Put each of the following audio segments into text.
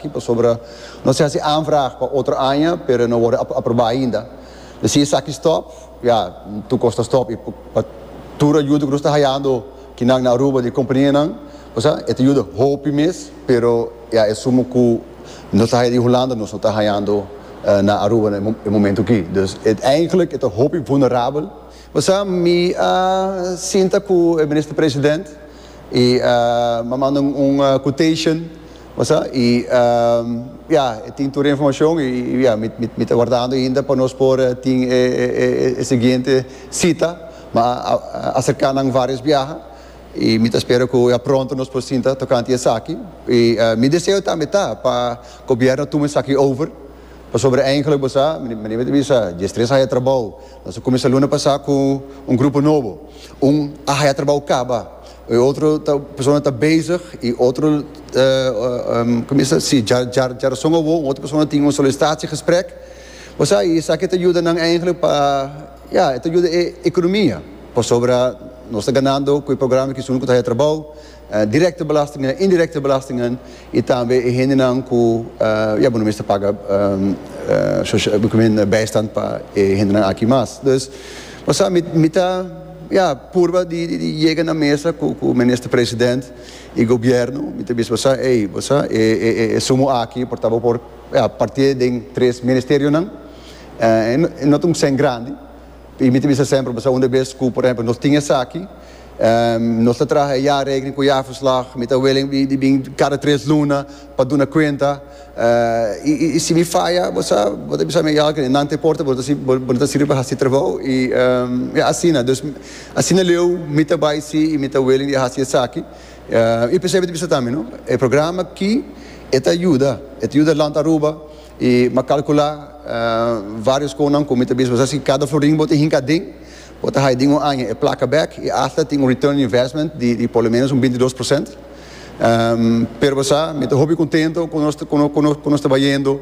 Aki pasobra nos a hasi aanvraag pa otro aña pero e no worde aprobá ainda. P'e si esaki stòp, ya, tur kos ta stòp i pa tur ayuda ku nos ta hayando kinan na Aruba di kompanianan, bo sa, e ta yuda hopi mes, pero ya e sumo ku nos ta haya di Hulanda nos no ta hayando na Aruba na e momentu aki. Dus uiteindelik e ta hopi vulnerabel. Bo sa, mi a sinta ku e Minister-President. y m'a manda un quotation bo sa y ya e tin tur e informacion y ya mi ta guardando ainda pa nos por tin e siguiente cita m'a acerca nan varios biaha y mi ta spera cu ya pronto nos por sinta tocante esaki y mi deseo tambe ta pa gobierno tuma esaki over. Pasobra eindelijk bo sa, meneer me ta bisa, dje stres haya trabao. Nos a cuminsa luna pasá cu un grupo nobo. Un a haya trabao caba. E otro ta, persona ta bezig y otro, cuminsa, si, dja, dja, dja razon awor un otro persona tin un solicitatie-gesprek. Bo sa, y esaki ta yuda nan eindelijk pa, ya, e ta yuda e economia. Pasobra nos ta ganando cu e programa kies unu cu ta haya trabao. Directe belastingnan, indirecte belastingnan y tambe e hendenan cu ya bo no mester paga bijstand pa e hendenan aki mas. Dus bo sa mi ta ya purba di yega na mesa cu Minister President y Gobierno mi ta bisa bo sa ey bo sa e sumo aki por ta bo por ya partie den tres ministerionan y no ta un cent grandi. Y mi ta bisa semper bo sa unda bes cu por ehemplo nos tin esaki, nos ta traha e jaarrekening cu jaarverslag, mi ta willing di bin cada tres luna pa duna cuenta, y si mi faya bo sa bo ta bisa mi ya oke nan ta importa bo no ta sirbi pa haci trabao y ya asina, dus asina leu mi ta bay si y mi ta willing di a haci esaki, y p'esey mi ta bisa tambe no e programa aki e ta yuda, e ta yuda Land Aruba I m'a calcula varios conan cu mi ta bisa boso si cada florin bo ta hinca aden, bo ta haya den un aña e placa bek i asta tin un return on investment di por lo menos un bintidos por cent. Pero bo sa, mi ta hopi contento cu nos cu nos ta bayendo.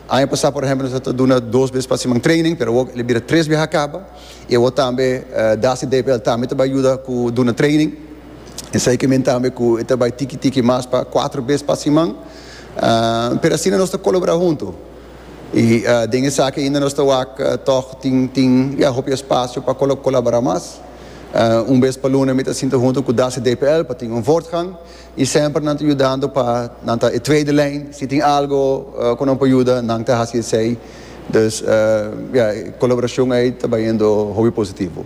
Aña pasa por ehempel nos a ta duna dos bes pa siman training, pero awor el a bira tres bes a caba i awor tambe Dasi DPL tambe ta bay yuda cu duna training. Esey ke men tambe cu e ta bay tiki tiki mas pa cuatro bes pa siman. pero asina nos ta colabora hunto y den esaki ainda nos ta wak tog tin tin ya hopi espacio pa colabora mas un bes pa luna mi ta sinta hunto cu das y DPL pa tin un voortgang y semper nan ta yudando pa nan ta e tweede lijn si tin algo cu nan por yuda nan ta haci esey, dus ya e colaboracion ay ta bayendo hopi positivo.